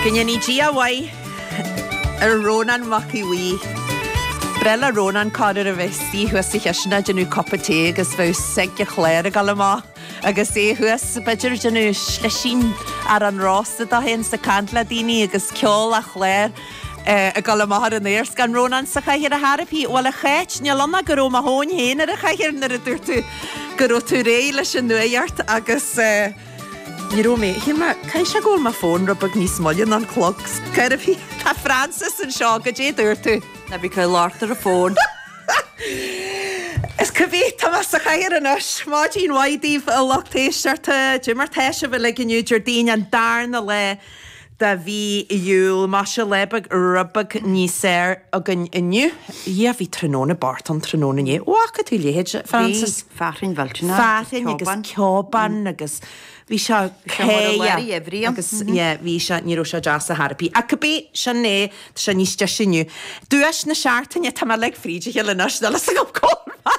Go ndéanaí Dia a mhaith ar Rónán Mac Aodh Bhuí. Ba bhreá le Rónán cá fhad a bheith ina shuí thuas sa chistineach ag déanamh cupa tae agus bheadh sig an chláir ag dul amach agus é thuas, b'fhéidir ag déanamh slisín arán rósta dó fhéin is ag caint le daoine agus ceol an chláir ag dul amach ar an aer. 'S gan Rónán sa chathaoir ar chor ar bith, bhuel a Cháit, níl ann ach go raibh mo thóin fhéin ar an chathaoir nuair a dúirt tú go raibh tú réidh leis an nuacht agus. Ní raibh mé. Shíl mé, caithfidh sé go bhfuil mo fón rud beag níos moille ná an clog. Cibé ar bith, Tá Frances anseo. Goidé a dúirt tú? Ná bí ag amharc ar an bhfón. Is cibé, tá mé sa chathaoir anois. Maidin mhaith daoibh a lucht éisteachta. Goidé mar tá sibh uilig inniu, Déardaoin an darna lá. de mhí Iúil. Maise lá beag rud beag níos fearr againn inniu. Dhia, bhí tráthnóna bocht ann tráthnóna inné. An bhfaca tú a leithéid, a Frances. Bhí, fearthainn mhillteanach agus ceobán. Fearthainn agus ceobán agus bhí sé cé, yeah, agus yeah, bhí sé, ní raibh sé deas ar chor ar bith. Ach cibé, sin é. Tá sé níos deise inniu. Duais na Seachtaine, Tá mé uilig fríd a chéile anois, níl fhios agam cá bhfuil mé!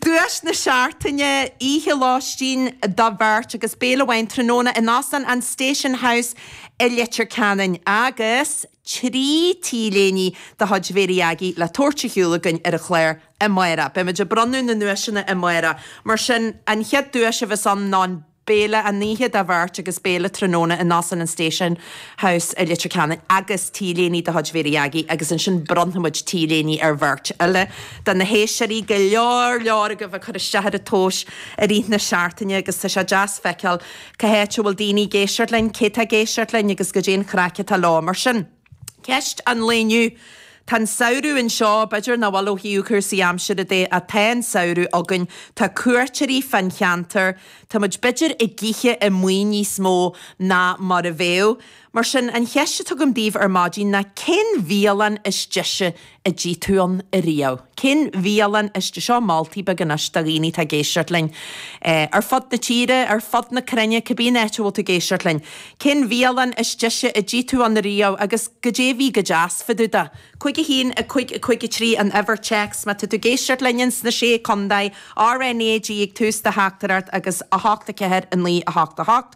Duais na Seachtaine, Oíche lóistín do bheirt agus béile amháin tráthnóna in Óstán an Station House i Leitir Ceanainn agus trí t-léiní de chuid Mhary Aggie le tabhairt ar shiúl againn ar an chlár amárach. Beimid ag bronnadh na nduaiseanna amárach. Mar sin, an chéad duais a bheas ann ná an. béile an oíche do bheirt agus béile tráthnóna in Óstán an Station House i Leitir Ceanainn agus t-léiní de chuid Mhary Aggie agus ansin bronnfaimid t-léiní ar bheirt eile de na héisteoirí go leor leor agaibh ag cur isteach ar an tomhas i rith na seachtaine agus tá sé deas feiceáil cá háit a bhfuil daoine ag éisteacht linn, cé tá ag éisteacht linn agus goidé an chraic atá leo mar sin. Ceist an lae inniu. Tá an samhradh anseo, b'fhéidir nach bhfuil ó thaobh cúrsaí aimsire de ach tá an samhradh againn. Tá cuairteoirí fán cheantar. Tá muid b'fhéidir ag ithe amuigh níos mó ná mar a bheadh. Mar sin, an cheist atá agam daoibh ar maidin ná cén bhialann is deise a d'ith tú ann riamh? Cén bhialann is deise, moltaí beaga anois do dhaoine atá ag éisteacht linn. Ar fud na tíre, ar fud na cruinne, cibé an áit a bhfuil tú ag éisteacht linn. Cén bhialann is deise a d'ith tú ann riamh agus goidé a bhí go deas fá dtaobh de? 51553 an uimhir téacs má tá tú ag éisteacht linn ins na Sé Contae, RNAG ag tús do theachtaireacht agus 8 4 9 8 8.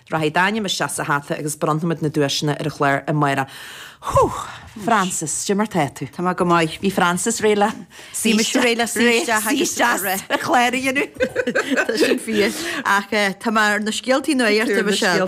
Rachaidh d'ainm isteach sa hata agus bronnfaimid na duaiseanna ar an chlár amárach. Húch! Frances, goidé mar tá tú? Tá mé go maith. Bhí Frances réidh le suí isteach. Bhí mise réidh le suí isteach agus an clár a dhéanamh. Tá sin fíor. Ach tá mé ar na scéaltaí nuachta Michelle.